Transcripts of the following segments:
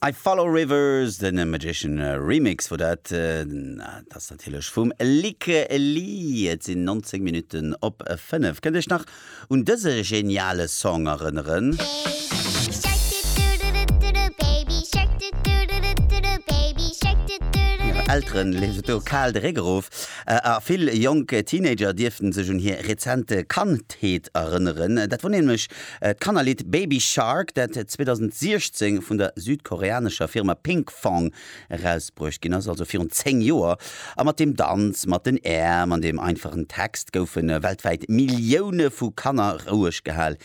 I Follow Rivers, den Magician Remix wor dat. Dat ass natierlech vum Lykke Li. Et sinn 19 Minutten op 5. Kënnt Iech nach un dëse geniale Song erënneren? Hire Eltere leeft et do kal de Réck erof a vill jonk Teenager dierften sech un hir rezent Kandheet erënneren. Dat wor nämlech D'Kannerlidd Baby Shark, dat 2016 vun der südkoreanescher Firma Pinkfong erausbruecht ginn ass, also virun 10 Joer, a mat dem Danz mat den Äerm an dem einfachen Text goufe weltwäit Millioune vu Kanner roueg gehal,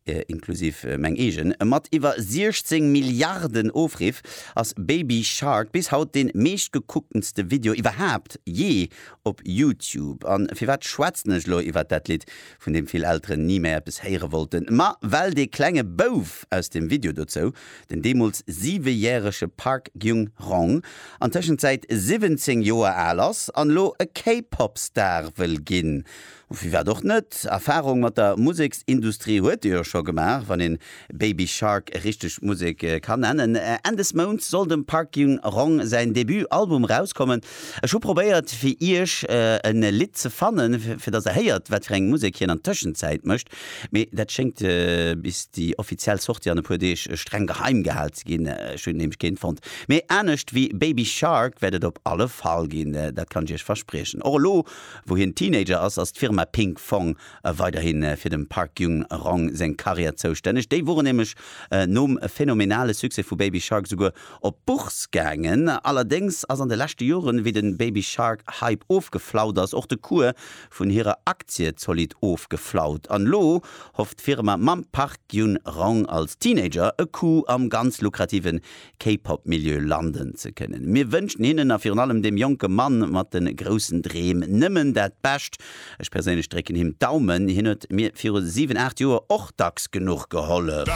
inklusiv meng eegen. Mat iwwer 16 Milliarden Ofriff ass Baby Shark bis haut dee meeschtgekucktenste Video iwwerhaapt jee op YouTube. A firwat schwätzen ech elo iwwer dat Lidd? vun deem vill Elteren ni méi eppes héiere wollten, ma well dee klenge Bouf aus dem Video dozou, den deemools siwejärege Park Gyung-rong, an Tëschenzäit 17 Joer al ass an elo e K-Pop-Star wëll ginn. Firwat och net? Erfarung mat der Museksindustrie huet ee jo scho gemaach, wann een Baby Shark e richtegt Musek ka nennen. Enn des Mounts soll dem Park Jin Rong säin Debut Album rauskommen. Ech hu probéiert fir iech en Lidd ze fannen fir dass der héiert wat fir eng Musek hien an Tëschenzäit mécht, mee dat schéngt bis déi offiziell Sortie an e puer Deeg streng geheim gehal ze ginn. Ech hunn nämlech keen fonnt, mee anescht wéi Baby Shark wäert et op alle Fall ginn, dat kann ech iech verspriechen. Och elo wou hien Teenager ass, ass d'Firma Pink Fong weiderhi fir dem Park Jung-rong seng Karriär zoustänneg. Déi woren nämlech nom phänomenale Succès vu Baby Shark souguer op d'Bourse gaangen. Allerdéngs ass an de leschte Joren, wéi den Baby Shark Hype ofgeflaut ass, och de Cours vun hirer Aktie zolidd ofgeflaut. An elo hofft d'Firma mam Park Jun-rong als Teenager e Coup am ganz lukrativen K-Pop Milieu landen ze kënnen. Mir wënschen hinnen a virun allem deem jonke Mann mat de groussen Dreem nëmmen dat Bescht. Ech perséinlech drécken him d'Daumen. Hien huet mir viru 7, 8 Joer och dacks genuch gehollef.